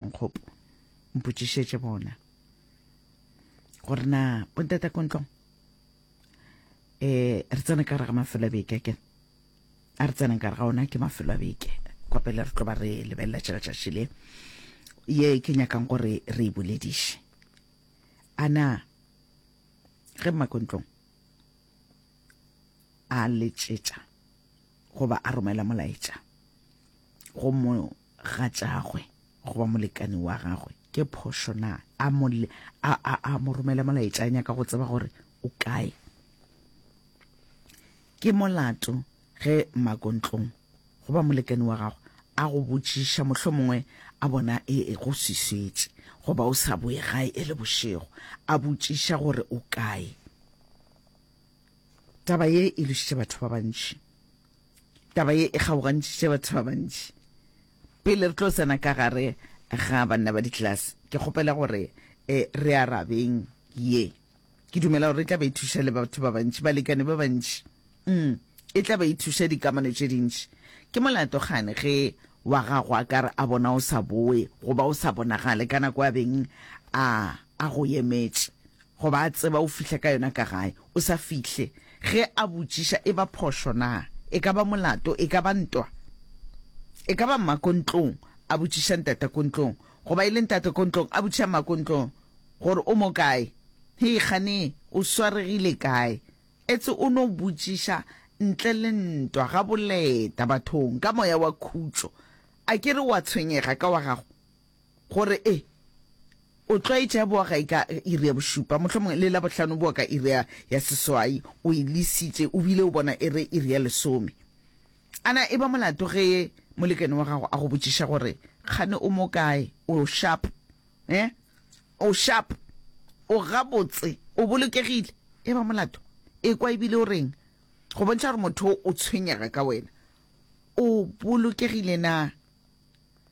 nkgopo mpotšišetše bona gore na bontata kontlong eh re tsena ka re ga mafelo a beke ke a re tsenang ka re ga ona ke mafelo a beke kwa pele re tlo ba re lebelela tšela tšatši le ye ke nyakang gore re e bolediše ana ge mmakontlong a letšetša goba a romela molaetša go mo ga tšagwe goba molekani wa gagwe ke phošo na a mo a a a mo romela molaetša a nyaka go tseba gore o kae ke molato ge makontlong goba molekani wa gago a go botšiša mohlho mongwe a bona e, e go swiswetše goba o sa boe gae e le bošego a botšiša gore o kae Taba ye e lošitše batho ba bantši. Taba ye e kgaogantšitše batho ba bantši. Pele re tlo tsena ka gare ga banna ba ditlelase, ke kgopela gore e, re arabeng ye. Ke dumela gore e tla be e thuša le batho ba bantši, balekane ba bantši. Mm, e tla be e thuša dikamano tše dintši. Ke molato gane ge wa gago a ka re a bona o sa boe goba o sa bonagale ka nako a beng a, a go emetše. Go ba a tseba o fihla ka yona ka gae, o sa fihle. Ge a botšiša, e ba phošo na? E ka ba molato, e ka ba ntwa. E ka ba mma ko ntlong a botšiša ntata ko ntlong, goba e le ntata ko ntlong a botšiša mma ko ntlong gore o mo kae. Hei kgane, o swaregile kae? Etse o no botšiša ntle le ntwa, gaboleta bathong ka moya wa khutšo. A ke re o a tshwenyega ka wa gago? Gore e O tlwaetše ya boa gae ka iri ya bošupa, mohlomongwe le Labohlano boa ka iri ya, ya seswai, o e lesitše, o bile o bona e re iri ya lesome. A na e ba molato ge molekane wa gago a go botšiša gore, Kgane o mo kae? O sharp? Eh? O sharp? O gabotse? O bolokegile? E ba molato? Ekwa e bile o reng? Go bontšha gore motho o tshwenyega ka wena. O bolokegile na?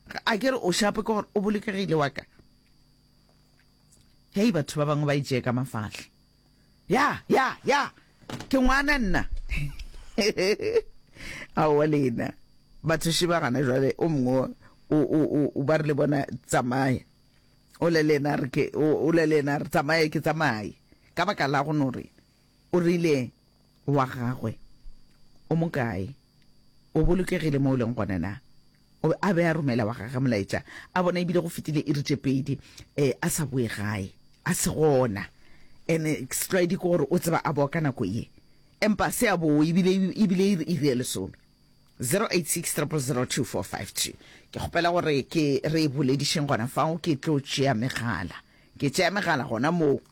Ga a ke re o šapo ke gore o bolokegile wa ka. Hei, batho ba bangwe ba itšee ka mafahla. Ya, ya, ya, ke ngwana nna. Aowa lena, batho šiba gana jwale o mongwe o, o, o, o ba re le bona tsamaya. O le lena re ke, o le lena re tsamaye ke tsamaye. Ka baka la go no re, o rile wa gagwe, o mokae, o bolokegile mo o leng gone na? O be a be a romela wa gagwe molaetša, a bona e bile go fetile iri tše pedi a sa boe gae, a se gona. Ene setlwaedi ke gore o tseba a boa ka nako ye, empa se a boe e bile e bile e re iri ya lesome. 0860002452 Ke kgopela gore ke re e boledišeng gona fao, ke tlo tšea megala. Ke tšea megala gona moo.